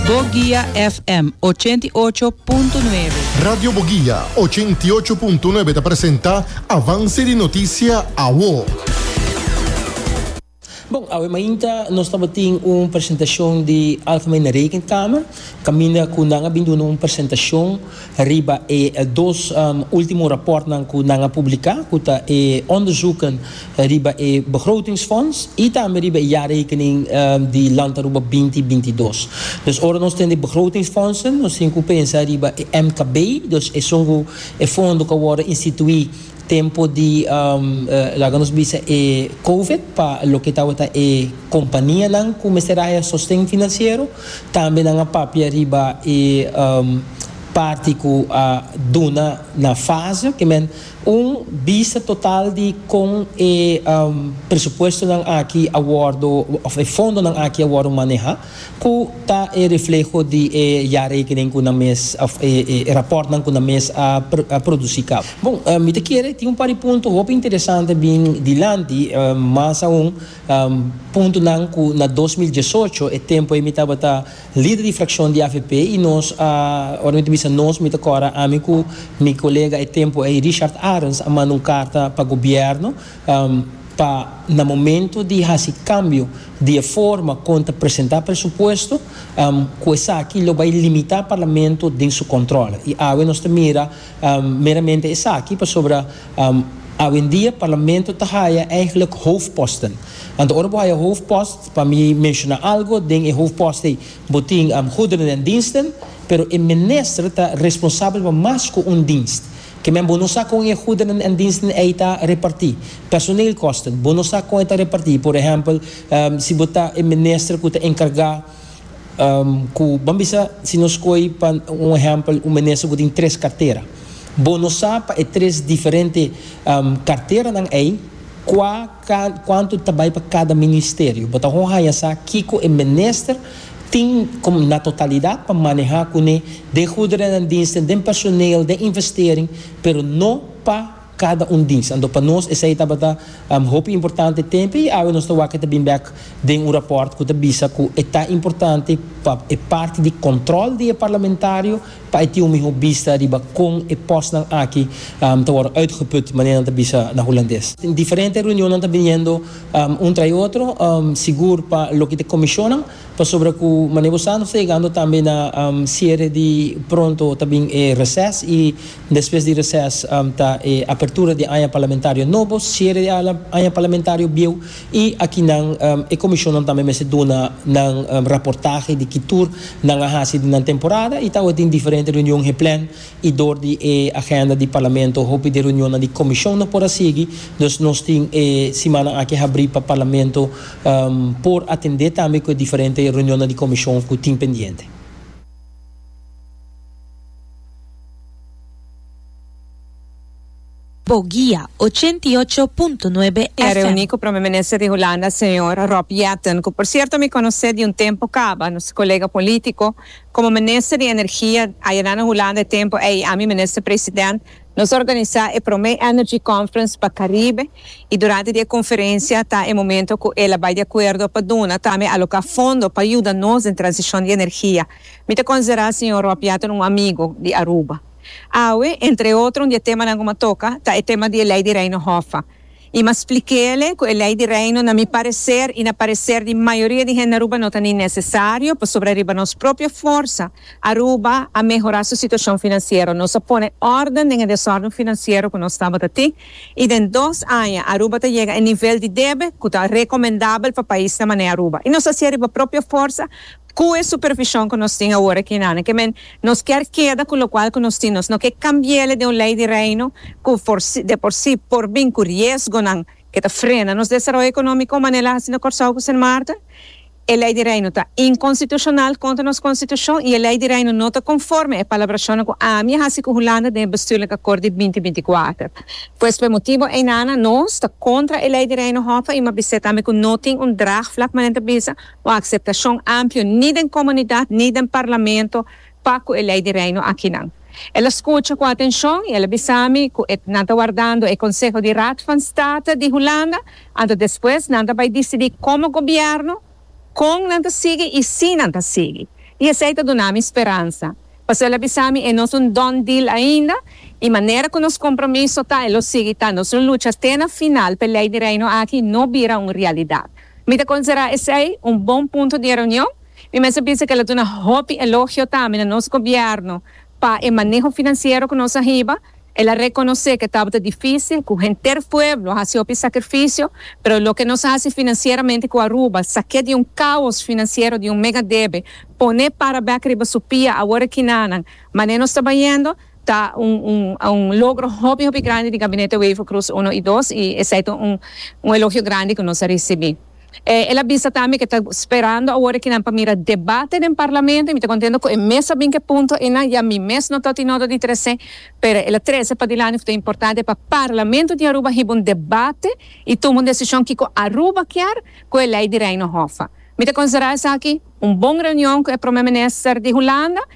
Boguia FM ochenta i ocho punto nuebe. Radio Boguia ochenta i ocho punto nuebe ta presenta Avance di Noticia Awo. Bon, awe mainta nos tabatin un presentacion di Alpha Mena Rekenkamer, caminda cu nan a bin duna un presentacion Riba e dos ultimo rapòrtnan ku nan a publiká, ku ta e onderzoeken riba e begrotingsfonds i tambe riba e jaarrekening di Land Aruba binti binti i dos. Dus ora nos tin di begrotingsfondsen, nos tin ku pensa riba e MKB, dus esun ku e fondo ku a wòrdu instituí tempu di, laga nos bisa, e Covid pa loke tabata e kompanianan ku mester haya sosten finansiero. Tambe nan a papia riba e parti cu a duna na fase, oke men, un bista total di con e presupuestonan aki a wordo, of e fondonan aki a wordo maneha, cu ta e refleho di e jaarrekening cu nan mes, of e raportnan cu nan mes a produci caba. Bon, mi ta kere tin un par di punto hopi interesante bin dilanti, mas aun. Puntonan ku na dos mil diesocho, e tempu ei mi tabata lider di frakshon di avp i nos a, ora mi ta bisa nos mi ta kòrda ami ku mi kolega e tempu ei Richard Arens a manda un karta pa gobièrnu pa na momentu di hasi kambio di e forma kon ta presentá presupuesto ku esaki lo bai limitá parlamento den su kòntròl. I awe nos ta mira Meramente esaki pasobra awendia parlamento ta haya eigenlijk hoofdposten. Anto ora bo haya hoofdpost, pa mi menshona algo, den e hoofdpost ei bo tin goederen en diensten, pero e minister ta responsabel pa mas ku un dienst. Ke men bo no sa kon e goederen en diensten ei ta reparti. Personeelkosten, bo no sa kon e ta reparti. Por ehèmpel, si bo ta e minister ku ta enkargá. Cu, ban bisa, si nos coy pa un ehempel un minister cu tin tres cartera. Bo no sa pa e tres diferente carteranan ey cua cuanto ta bay pa cada ministerio. Bo ta hopi haya sa kico e minister tin como na totalidad pa maneha cune den goederenandiensten, den personeel, den investering, pero no pa. Kada un dis. Anto pa nos esei tabata hopi importante tempu i awe nos ta wak e ta bin bek den un rapòrt ku ta bisa ku e ta importante pa e parti di kòntròl di e parlamentario pa e tin un mihó bista riba kon e pòstnan aki ta wòrdu uitgeput, manera nan ta bisa na hulandes. Den diferente reunion nan ta bin yendo un tra e otro, sigur pa loke ta e komishonnan, pasobra ku manera bo sa nos ta yegando tambe na siere di pronto ta bin e reses i Despues di reses ta e apertura di e aña parlamentario nobo, siere di e aña parlamentario bieu y aki nan e comisionnan tambe mester duna nan raportahe di ki tur nan a haci di nan temporada y tawata tin diferente reunion geplan y door di e agenda di parlamento hopi di e reunionnan di comision no por a sigui, dus nos tin e simannan aki habri pa parlamento por atende tambe cu e diferente reunionnan di comision cu tin pendiente. Bo guia, ochenta i ocho punto nuebe Mi a reuní cu Prome Minister di Hulanda, Señor Rob Jetten, cu por cierto mi conocé di un tempo caba, nos colega politico. Como Minister di Energia ayera na Hulanda e tempo ey, ami Minister President, nos organisa e prome Energy Conference pa Caribe y durante di e conferencia ta e momento cu el a bay di acuerdo pa duna tambe aloca fondo pa yuda nos den transicion di energia. Mi ta considera Señor Rob Yatten un amigo di Aruba. Awe, entre otro un di e temanan cu mi a toca ta e tema di e Ley di Reino Hoffa. Y mi a splic'ele cu e Ley di Reino na mi parecer y na parecer di mayoria di hende Aruba no ta ni necesario pasobra riba nos propio forsa Aruba a mehora su situacion financiero. Nos a pone orden den e desorden financiero cu nos tabata tin y den dos aña Aruba ta yega e nivel di debe cu ta recomendabel pa paisnan mane Aruba. Y nos a haci'e riba propio forsa Cu e supervision cu nos tin awor aki na Kemen, nos kier keda cu locual cu nos tin, nos no ke cambiele den un ley di Reino cu forsi, de por si, por bin cu riesgonan ke ta frena nos desaroyo economico manera el a haci na Corsou cu Sint Maarten. E ley di Reino ta inconstitucional contra nos Constitucion y e ley di Reino no ta conforme e palabracionan cu ami a haci cu Hulanda den e Bestuurlijk Akkoord di binti binti kuater. Pues p'e motibo ei na nos ta contra e ley di Reino Hoffe y m'a bisa tambe cu no tin un draagvlak manera el ta bisa, Un akseptashon amplio ni den komunidat ni den parlamento pa ku e Lei di Reino akinan. El a skucha ku atenshon i el a bisa mi ku e nan ta wardando e konseho di Raad van State di Hulanda, anto despues nan ta bai disidí komo gobièrnu kon nan ta sigui i si nan ta sigui. I esei ta duna mi speransa. Pasó el a bisa mi e no es un done deal ainda i manera ku nos kompromiso ta e lo sigui ta nos lo lucha te na final p'e Lei di Reino aki no bira un realidat. Mi ta considera esey un bon punto di e reunion. Mi mester bisa cu el a duna hopi elogio tambe na nos gobierno pa e maneho financiero cu nos a hiba. El a reconoce cu tabata dificil, cu henter pueblo a haci hopi sacrificio, pero loke nos a haci financieramente cu Aruba, saque di un caos financiero di un mega debe, pone para bek riba su pia awor e kinanan, mane nos ta bayendo, Ta un logro hopi hopi grandi di Gabinete Wever Croes Uno i Dos i esei ta un elogio grandi ku nos a risibí. El a bisa tambe ku e ta sperando awor aki nan pa mira debate den Parlamento i mi ta kontento ku e mes a bin ku e punto einan, ya mi mes no ta oti noto di tres'é, pero el a trese padilanti ku ta importante pa Parlamento di Aruba hiba un debate i tuma un desishon kiko Aruba kier ku e Lei di Reino Hoffa. Mi ta konsiderá esaki un bon reunion ku e Prome Minister di Hulanda.